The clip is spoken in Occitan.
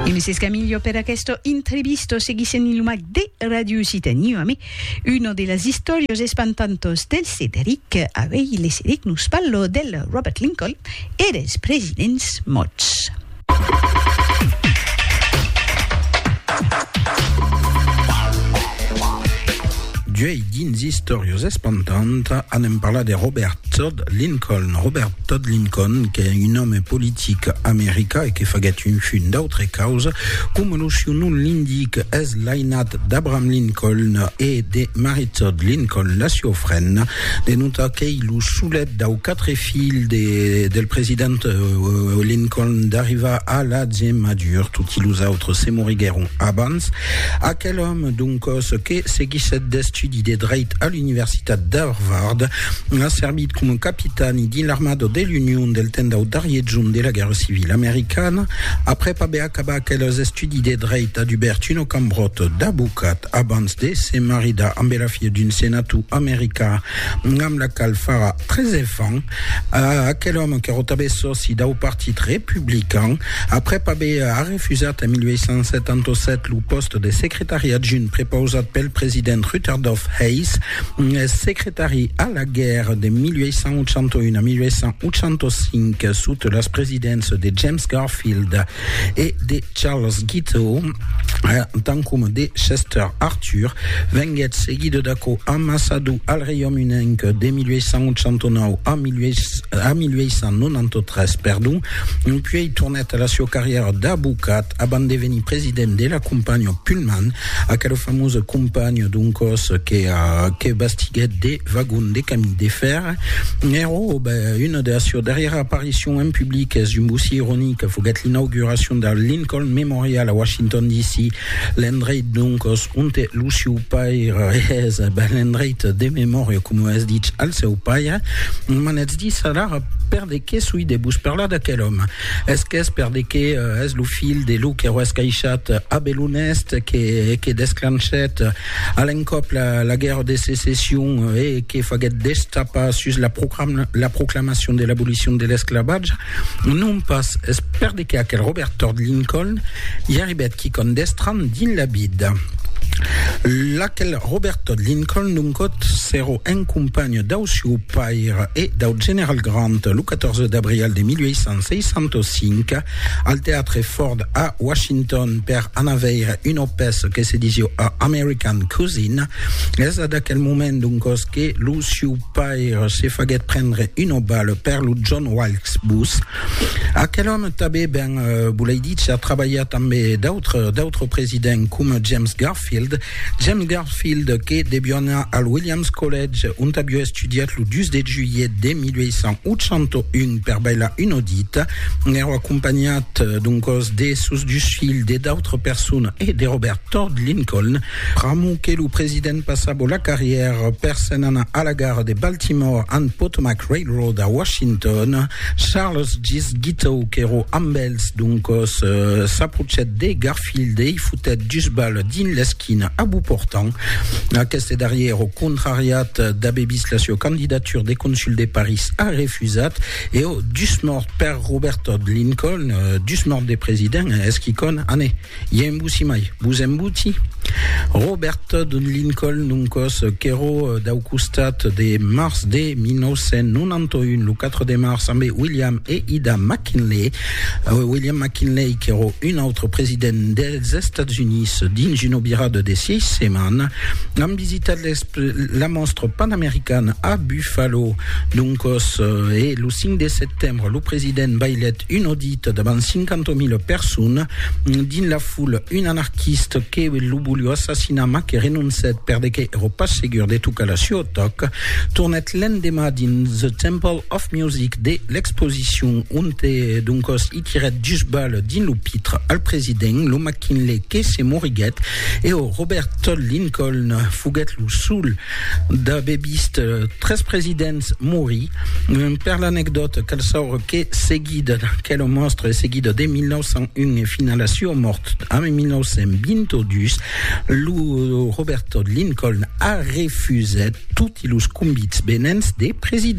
E me s'escamillo per aquesto intrevisto seguissent lo mac de Radio Occitanie amé uno de las istòrios espantantos del Cederic avei le Cedec nos parlo del Robert Lincoln e dels presidents mots. D'uei dins istòrios espantant anem parlar de Robert Lincoln, Robert Todd Lincoln, qu'es un òme politic america e que faguèt un fun d'autre causa, coma lo siu nom l'indique, es l'ainat d'Abraham Lincoln e de Mary Todd Lincoln, la sieu frenda, de notar qu'ei lo solet dau quatre filhs de del president Lincoln d'arrivar a l'atge madur, toti los autres se moriguèron abans. Aquel òme, doncòs, que seguissèt d'estudi de dreit a l'Universitat d'Harvard, a servit coma capitani dins l'armada de l'Union del temps dau darrier jorn de la Guèrra Civila Americana. Aprèp aver acabat aqueles estudis de dreit, a dubèrt una cambròta d'abocat abans de se maridar ambe la filha d'un senator americà amb la qual farà tres enfants. Aquel òme qu'èra tanben sòci dau Partit Republican, aprèp aver arrefusat en 1877 lo pòste de secretari adjunt prepausat pel president Rutherdof Hayes, Secretari a la guèrra de 1881 a 1885 sota las presidéncias de James Garfield e de Charles Guiteau, tant coma de Chester Arthur, venguèt seguida d'aquò ambaçador al Reiaume Unenc de 1889 a 1893, puèi tornèt a la siua carrièra d'abocat. abans de venir president de la companha Pullman, aquela famosa companha doncòs que, que bastiguèt de vagons de camins de fer. Ero una de las seues darrièras aparicions en public, es un bocí ironic, foguèt l'inauguracion del Lincoln Memorial a Washington DC, l'endreit doncòs onte lo siu paire es, ben, l'endreit de memòria, coma es dich al seu paire. M'anètz dir alara per de qué soi de vos parlar d'aquel òme. Es qu'es per de que es lo filh de lo que roes caishat Abel Honest que que desclanchèt a l'encòp la la guèrra de secession e que faguèt destapar sus la la proclamacion de l'abolicion de l'esclavatge, non pas, es per de que aquel Robert Todd Lincoln i arribèt quicòm d'estranh dins la vida. L'aquel Robert Todd Lincoln, d'un còt, s'èro un companh dau sieu Fire e dau general Grant lo 14 d'abrial de 1865 al teatre Ford a Washington per anar veire una pèça que se disiu A American Cousin. Es ad aquel moment doncos que lo siu paire se faguèt prendre una bala per lo John Wilkes Booth. Aquel òme tabé ben, volei dícer, trabalhar tanbé d'autres d'autres presidents coma James Garfield, Garfield, James Garfield, que debiona al Williams College, ont avió estudiat lo 2 de julhet de 1881 per bailar un audit, èrò acompanhat d'un còs de sos dus filhs, de d'autres personas e de Robert Todd Lincoln, pr'amor que lo president passabo la carrièra per se'n anar a la gara de Baltimore and Potomac Railroad a Washington. Charles Gis Guiteau, qu'èrò amb els, doncòs s'aprochet de Garfield, Field ei fotèt dus bal dins l'esquina a Beau Portant. Aqueste darrier, au contrariat d'aver vist la sieu candidatura de consul de París, a refusat e au dus mòrt per Robert Todd Lincoln, dus mòrt de president, es quicòm, ane, i en vosi mai, vos en voti? Robert Todd Lincoln, un còs qu'èro dau costat de març de 1991, lo 4 de març, ambe William e Ida McKinley, William McKinley, qu'èro un autre president dels Estats Units, dins una virada de sièis setmanas, an visitat la mòstra panamericana a Buffalo. Doncòs, e lo 5 de setembre, lo president bailèt un audit davant 50.000 personas. Dins la foula, un anarquist que lo volió assassinar mas que renoncèt perdeque èro pas segur de tocar la suò tòc, tornèt l'endemà dins The Temple Of Music de l'exposicion, onte doncòs i tirèt dus balhs dins lo pitre al president, lo McKinley que se moriguèt e o Robert Todd Lincoln foguèt lo sol d'aver vist tres presidents morir. Per l'anecdòta, cal saure que seguida d'aquela mòstra e seguida de 1901 e fins a la sua mòrt a 1922, lo Robert Todd Lincoln a refusèt toti los convits venents de presidents.